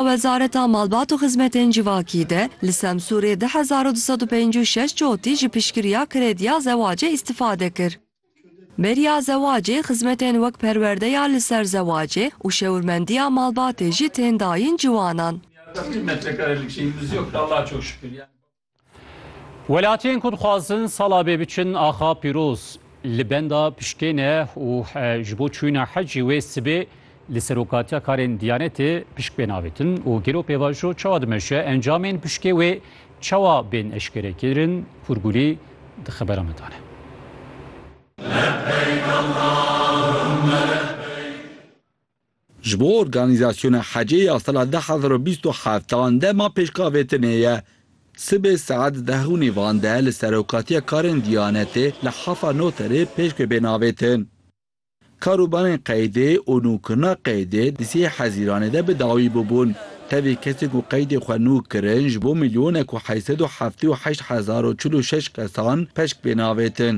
Wezareta Malbat û Xizmetên Civakî de li Semsûrê du hezar û du sed û pênc û şeş çotî ji piştgiriya krediya zewacê îstîfade kir. Beriya zewacê, xizmetên wek perwerdeya li ser zewacê û şewirmendiya malbatê jî tên dayîn ciwanan. Welatiyên ku dixwazin sala bê biçin axa pîroz li benda piştê ne û ji bo çûna hecî wê sibê li serokatiya karên Diyanetê pişk bên avêtin û gelo pêvajo çawa dimeşe encamên piştê wê çawa bên eşkere kirin Hûrgulî di xebera me dane. Ji bo organîzasyona hecê ya sala du hezar û bîst û heft dema pêşkavêtinê ye. Sibê saet deh û nîvan de li Serokatiya Karên Diyanetê li Hafa Noterê pêş ve bên avêtin. Karûbarên qeydê û nûkirina qeydê di sê hezîranê de bi dawî bûbûn. Tevî kesên ku qeydê xwe nûk kirin ji bo milyonek û heşt sed û heftê û heşt hezar û çil û şeş kesan peşk bên avêtin.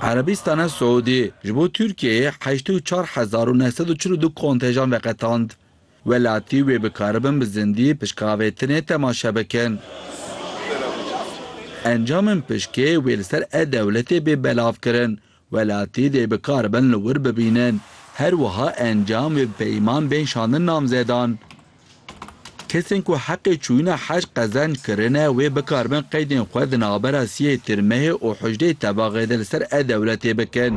Erebîstana Siûdî ji bo Tirkiyeyê heştê û çar hezar û neh sed û çil û du kontejan veqetand. Welatî wê bikaribin bi zindî pişkavêtinê temaşe bikin. Encamên pişkê wê li ser e-dewletê bê belav kirin, welatî dê bikaribin li wir bibînin. Her wiha encam wê bi peyman bên şandin namzedan. Kesên ku heqê çûyîna hej qezenc kirine wê bikaribin qeydên xwe di navbera siyê tirmehê û huşdeyê tevaxê de li ser e-dewletê bikin.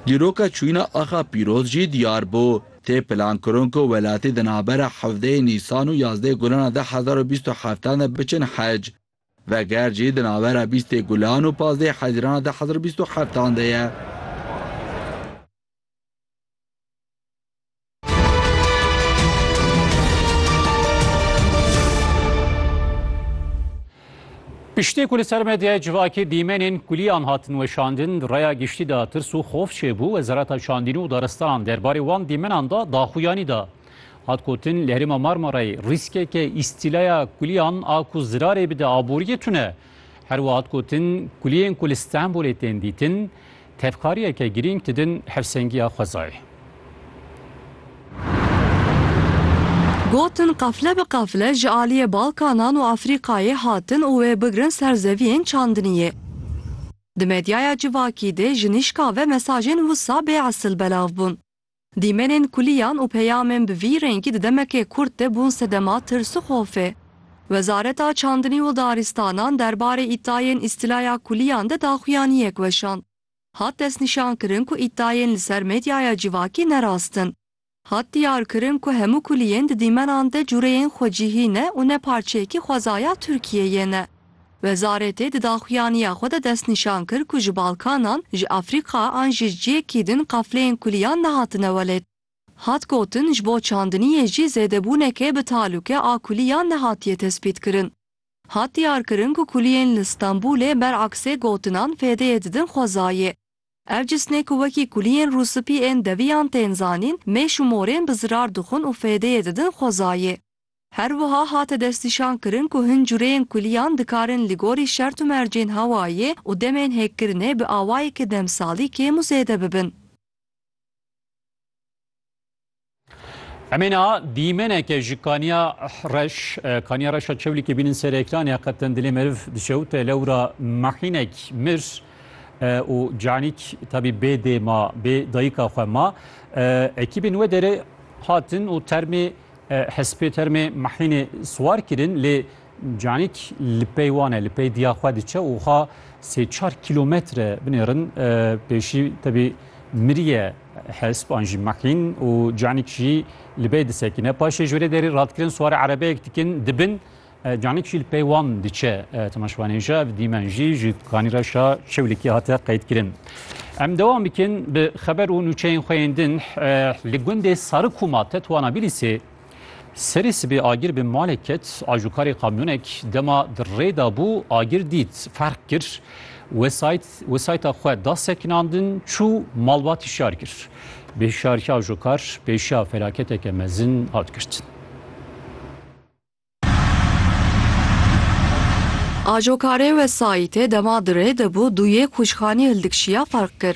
Dîroka çûyîna axa Pîroz jî diyar bû. Tê plankirin ku welatî di navbera hevdeyê Nîsan û yazdeyê Gulan a du hezar û bîst û heft an de biçin hej. Veger jî di navbera bîstê Gulan û pazdeyê Hezîran a du hezar û bîst û heft an de ye. Piştî ku li ser medyaya civakê dîmenên kuliyan hatin weşandin, raya giştî de tirs û xof çêbû, Wezareta Çandîn û Daristanan derbarê wan dîmenan de daxuyanî da. Hat gotin li herêma Marmarayê rîskeke îstîlaya kuliyan a ku zirarê bide aboriyê tune. Herwiha hat gotin kuliyên ku li Stenbolê tên dîtin, Tevkariyeke girîng didin hevsengiya xwezayê. Gotin qefle bi qefle ji aliyê Balkanan û Afrîkayê hatin û wê bigrin ser zeviyên çandiniyê. Di medyaya civakî de ji nîşka ve mesajên wisa bê esil belav bûn. Dîmenên kulîyan û peyamên bi vî rengî di demekê kurt de bûn sedema tirs û xofê. Wezareta Çandinî û Daristanan derbarê îdayên îstîlaya kulîyan de daxuyaniyek weşand. Hat destnîşankirin ku îdayên li ser medyaya civakî ne rast in. Hat diyarkirin ku hemû kulîyên di dîmenan de cureyên xwecihî ne û ne parçeyekî xwezaya Tirkiyeyê ne. Wezarêtê di daxuyaniya xwe de destnîşan kir ku ji Balkanan, ji Afrîka an ji ciyekî din qafleyên kuliyan nehatine welê. Hat gotin ji bo çandiniyê jî zêdebûneke bi talûke a kuliyan nehatiye tespîtkirin. Hat diyarkirin ku kuliyên li Stenbûlê beraksê gotinan fêdeyê didin xwezayê. Ev cisnê ku wekî kuliyên rûspî ên deviyan tên zanîn mêş û morên bi zirar dixwin û fêdeyê didin xwezayê. Her wiha hate destnîşankirin ku hin cureyên kulîyan dikarin li gorî şert û mercên hewayê û demên hêkkirinê bi awayeke demsalî kêm û zêde bibin. Em ê niha dîmeneke ji kaniya reş, kaniya reş a çewlîkê bînin ser ekranê ya qetin dilê meriv diçe û te lewra mehînek mir û canîk tabî bê dê ma, bê dayika xwe ma. Ekîbên wê derê hatin û termê Hespê termê Mahînê siwar kirin lê canîk li pey wan e, li pey diya xwe diçe û xwe sê çar kîlometre binêrin pêşî tevî miriye hesp an jî mahîn û canîk jî li bey disekîne. Paşê ji wê re derî radkirin siwar erebeyek dikin dibin Canik jî li pey wan diçe temaşvanên ji ev dîmen jî ji kanî re şa çewlikî hate qeydkirin. Em dewam bikin bi xeber û nûçeyên xwe yên din li gundê Sarikûma Tetwana Bîlîsê Serî sibê agir bi malê ket ajokarê kamyonek dema di rê da bû agir dît ferq kir wesayt wesayta xwe da sekinandin çû malbatî şar kir bê şarkî ajokar pêşiya felaketeke mezin hat girtin. Ajokarê wesayîtê dema di rê de bû du yê kûçxanî hildikşîya ferq kir.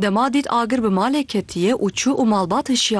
Dema dît agir bi malê ketîye û çû û malbat hişîyarî.